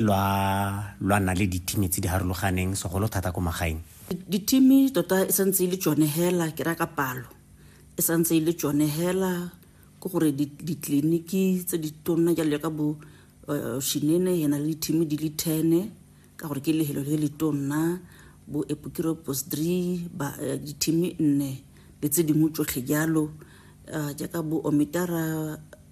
lwa lwa nna le ditimi tse di harologaneng segolo thata ko magaeng ditimi tota e santse e le tsone hela ke raya ka palo e santse e le tsone hela ke gore ditleliniki tse di tonna jalo ka bo eh, shinene yana le ditimi di le tene ka gore ke lehelo le le tonna bo epokiro postri eh, ditimi nne le tse dingwe tsotlhe jalo eh, jaaka bo omitara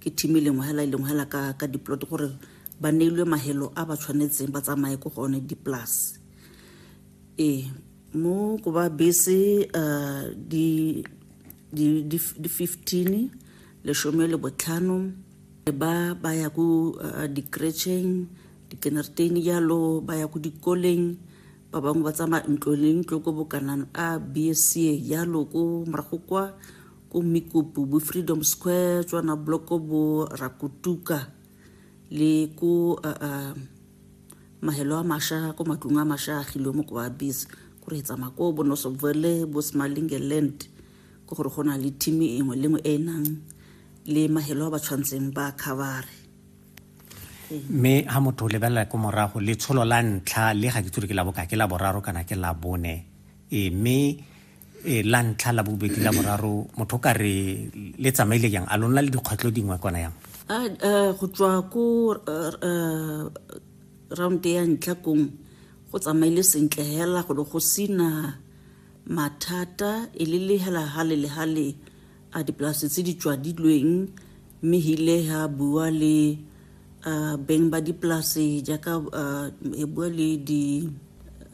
ke team e lengwe hela e lengwe hela ka ka diplot gore ba neilwe mahelo a ba tshwanetseng ba tsamaye ko go one di-plus ee mo ko ba bese um di di fifteen leshome le botlhano e ba ba ya ko uh, di-cretcheng di-kenertain jalo ba ya ko dikoleng ba bangwe ba tsamaya ntlo le ntlo ko bokanang a bsa jalo ko morago kwa ko Mikopo bo Freedom Square tswana bloko bo Rakutuka le ko uh, uh, mahelo a masha ko matlong a masha a gilwe mo ko ba bese ko re etsa mako bo nosobvele bo smalinge land ko gore go na le team engwe lengwe e nang le mahelo a ba tshwantseng ba khabare mme ha motho o lebelela ko morago letsholo la ntlha le ga ke tsore ke la boka ke la boraro kana ke la bone e mme e la ntlha la bobedi la boraro motho ka re le tsamaile jang a lona le dikgwetlho dingwe kona yang go tswa ko round ya ntlha kong go tsamaile sentle hela go go sina mathata e le le hela hale le hale a dipolase tse di tswadilweng mme hile ha bua le uh, beng ba dipolase jaaka uh, e bua le di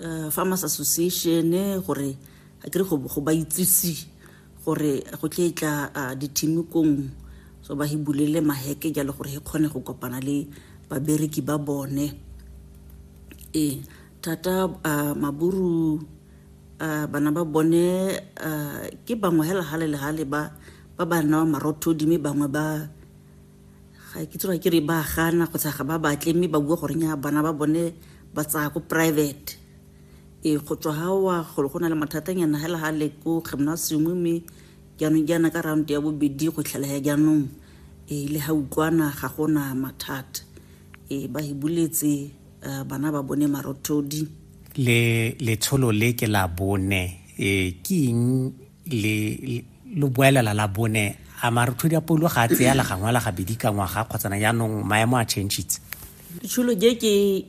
uh, farmers association gore a kere go ba itsise gore go tle e tla uh, dithimikong so ba hibulele maheke jalo gore he kgone go kopana le babereki ba bone e thata uh, maburu uh, bana ba bone uh, ke bangwe hela gale le gale ba ba ba newa marothodi mme bangwe ba ga ke tsoa ke re ba gana kgotsa ga ba batle mme ba bua gore nya bana ba bone ba tsaya ko private e go tswa ga wa golo go na le mathatanyana hela ga le ko gymnasium mme jaanong jaana ka round ya bobedi go tlhalaya jaanong e le ga utlwana ga gona mathata e ba e buletse uh, bana ba bone marothodi le letsholo le ke la bone e ke eng le lo boelela la bone a marothodi a polo ga a tseya la gangwe la gabedi ka ngwaga kgotsana jaanong maemo a changitse letsholo je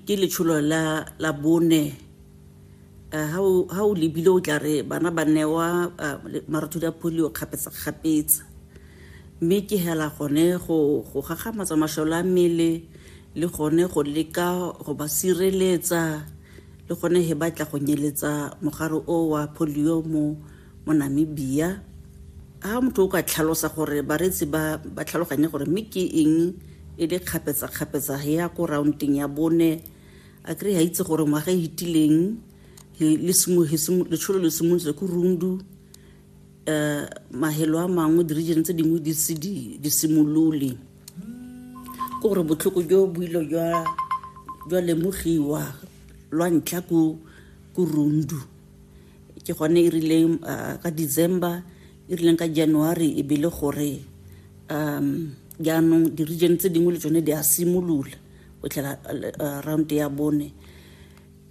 ke letsholo la bone ha o lebile o tla re bana ba newa marothodi a polio kgapetsa-kgapetsa mme ke hela gone go gagamatsa masole a mmele le gone go leka go ba sireletsa le gone he batla go nyeletsa mogare o wa polio mo mo namibia ha motho o ka tlhalosa gore bareetsi ba ba tlhaloganye gore mme ke eng e le kgapetsa-kgapetsa ya ko roundeng ya bone a kry ga itse gore ngwaga e fetileng letsholo le simolotse ko rundu um mahelo a mangwe di-region tse dingwe di se di simolole ke gore botlhoko jo bo ile jwa lemogiwa lwa ntlha ko rundu ke gone e rileng uh, ka december e rileng ka january e bele gore um jaanong di-region tse dingwe le tsone di a simolola o tlhela uh, round ya bone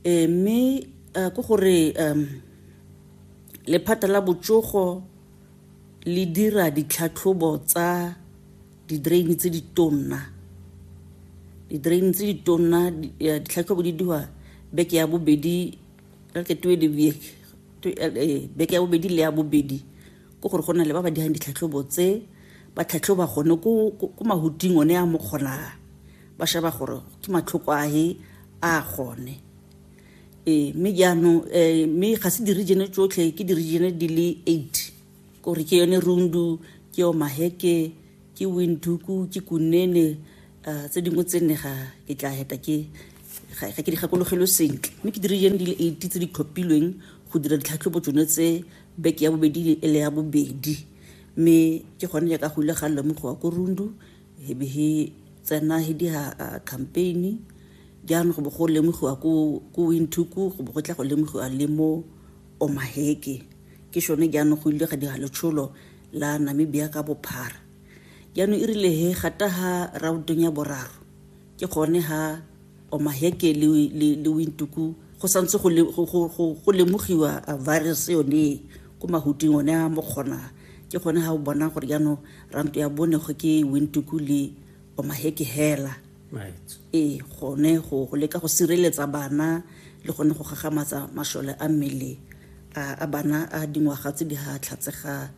e mme uh, ke gore um lephata la botsogo le dira ditlhatlhobo tsa di-drain tse di tonna di-drain tse di tonna eh, ditlhatlhobo di diwa beke ya bobedi ka ke twe di beke ya bobedi le ya bobedi ke gore go na le ba ba dirang ditlhatlhobo tse ba tlhatlhoba gone ko mahuting one a mokgonaa ba sheba gore ke matlhoko ahe a gone ee mme jaanong um mme ga se di-regione tsotlhe ke di-regione di le eight kore ke yone rundu ke yo maheke ke winduku ke kunene um tse dingwe tse nne ga ke tla heta ke ga ke di gakologelwe sentle mme ke di-regione di le eight tse di tlhophilweng go dira ditlhatlhobo tsone tse Beke ya bobedi le ele ya bobedi mme ke gone jaaka go ile ga lemogiwa ko Rundu he be he tsena he diha uh, campaign jaanong go bo go lemogiwa ko ko Windhoek go bo go tla go lemogiwa le mo Omaheke ke shone jaanong go ile ga dira letsholo la Namibia ka bophara jaanong e rile he gata ha rautong ya boraro ke gone ha omaheke le, le, le wintuku go santse go, go, go, go, go lemogiwa virus yone ko mahuting one a mo kgona ke gone ha o bona gore jaanong ranto ya bone go ke wintuku le omaheke hela right. ee gone go, go leka go sireletsa bana le gone go gagamatsa mashole a mmele a bana a dingwaga tse di ga tlhatsega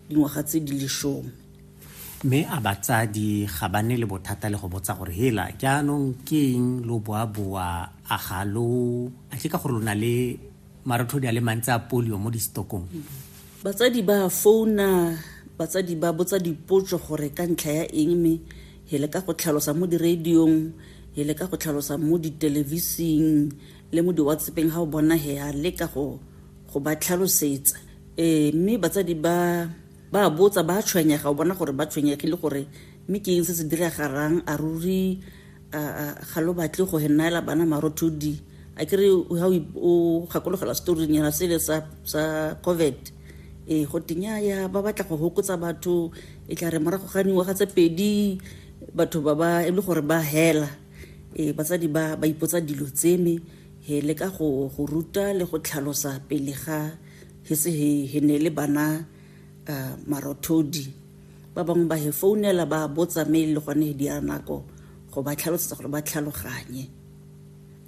dingwaga tse di lesome Mme a batsadi ga ba ne le bothata le go botsa gore hela jaanong ke eng lo boaboa a ga lo a ke ka gore lo na le marothodi a le mantsi a polio mo distokong batsadi ba founa batsadi ba botsa dipotso gore ka ntlha ya eng mme he le ka go tlhalosa mo diradiong he le ka go tlhalosa mo ditelevising le mo di-whatsappeng ga o bona he a leka go go ba tlhalosetsa um mme batsadi ba Ba a botsa, ba a tshwenyega, o bona gore ba tshwenyegile gore mme ke eng se se diragalang, a ruri ga lo batle go henaela bana marothodi. A kere ha o gakologela storing yona sele sa sa COVID e go tenya ya ba batla go hokotsa batho e tla re morago ga dingwaga tse pedi batho ba ba e le gore ba hela e batsadi ba ba ipotsa dilo tseme he le ka go go ruta le go tlhalosa pele ga he se he he ne le bana uh, marothodi ba bangwe ba he founela ba botsa me le gone he dia nako go ba tlhalosetsa gore ba tlhaloganye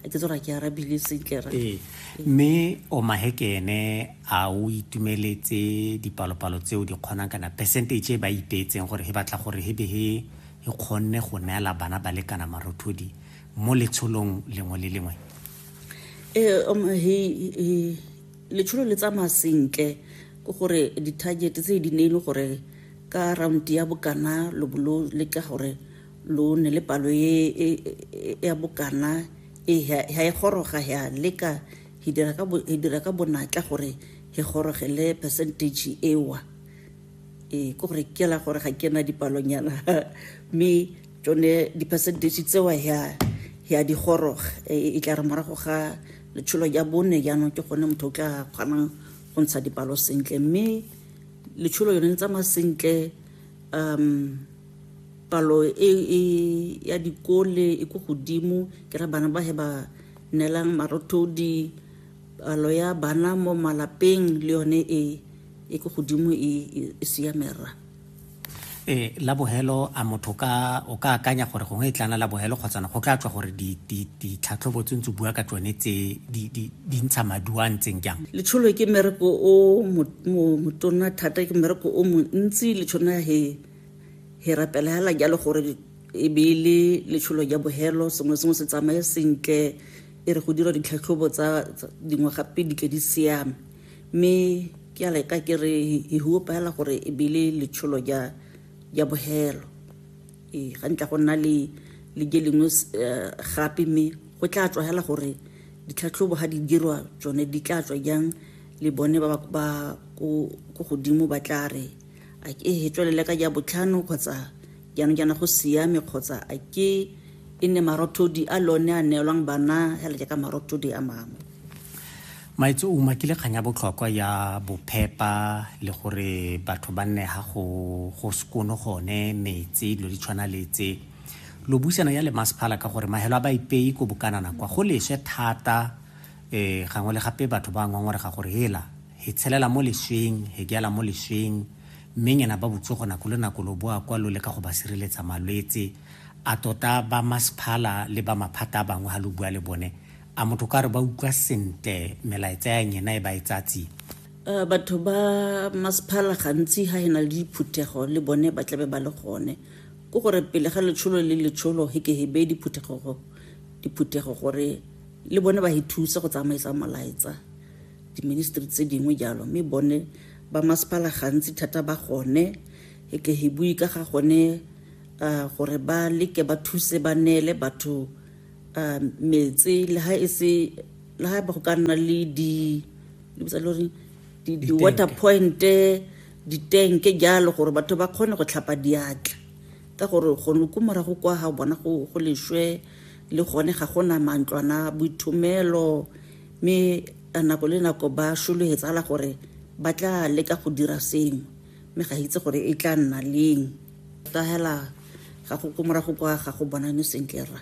a ke tsora ke arabile sentle ra ee mme o mahekene a o itumeletse dipalopalo tseo di kgonang kana percentage e ba ipeetseng gore he batla gore he be he e kgonne go neela bana ba lekana marothodi mo letsholong lengwe le lengwe ee um, he, he, letsholo le tsamaya sentle ke gore di-target tse di ne e le gore ka round ya bokana lo bo lo leka gore lo ne le palo e, e, e ya bokana e ha e goroga ya leka e dira ka bonatla gore e gorogele percentage ewa ee ke gore ke la gore ga ke na dipalonyana mme tsone di-percentage tsewa ya ya digoroga e tla re morago ga letsholo ya bone jaanong ke gone motho o tla kgonang go ntsha dipalo sentle mme letsholo yone le tsamaya sentle um palo e, e ya dikole e ko godimo ke ra bana ba he ba neelang marothodi palo ya bana mo malapeng le yone e e ko godimo e, e, e siame rra e la bogelo a motho ka o ka akanya gore gongwe e tlana la bogelo kgotsana go tla tswa gore ditlhatlhobo tse ntse bua ka tsone tse di ntsha maduo a ntseng jang letsholo ke mmereko o motona thata ke mmereko o montsi letshona he he rapela hela jalo gore e be e le letsholo ja bogelo sengwe sengwe se tsamaye sentle e re go dira ditlhatlhobo tsa dingwe gape di tle di siame mme ke a leka ke re he huopa hela gore e bile letsholo ja ja bohelo ee ga ntla go nna le le je lengwe eh, gape mme go tla tswa hela gore ditlhatlhobo ga di dirwa tsone di tla tswa jang le bone ba ba ko godimo ba tla re a ke e tswelele ka ja botlhano kgotsa jaanong jaana go siame kgotsa a ke e nne marothodi a lone a neelwang bana hela jaaka marothodi a mangwe maitse o umakile kgang ya botlhokwa ya bophepa le gore batho ba nne ga go go sekono gone metsi dilo di tshwana le tse lo buisana ya le masephala ka gore mahelo a ba ipei ko bokanana kwa go leswe thata um gangwe le gape batho ba ngwangwarega gore hela he tshelela mo lesweng he diala mo lesweng Mme nyena ba botsogo nako le nako lo boa kwa lo leka go ba sireletsa malwetse. A tota ba masphala le ba maphata a bangwe ha lo bua le bone, a motho o ka re ba utlwa sentle melaetsa ya nyena e ba e tsaya tsia? Batho ba masphala gantsi ha e na le diphuthego le bone ba tlabe ba le gone. Ko gore pele ga letsholo le letsholo he ke he beye diphuthego diphuthego gore le bone ba he thusa go tsamaisa molaetsa, diministry tse dingwe jalo, mme bone ba masepala gantsi thata ba gone e ke he bui ka ga gone uh, gore ba leke ba thuse ba neele batho uh, metse le ha e se le ha ba go ka nna le di le botsa lore di, di water point ditenke jalo gore batho ba kgone go tlhapa diatla ka gore gone ko morago kwa ga bona go, go lešwe le gone ga gona mantlwana boithomelo mme ka nako le nako ba šologetsala gore ba tla leka go dira sengwe mme ga itse gore e tla nna leng ka hela ga go ko morago kwa ga go bonane sentle ra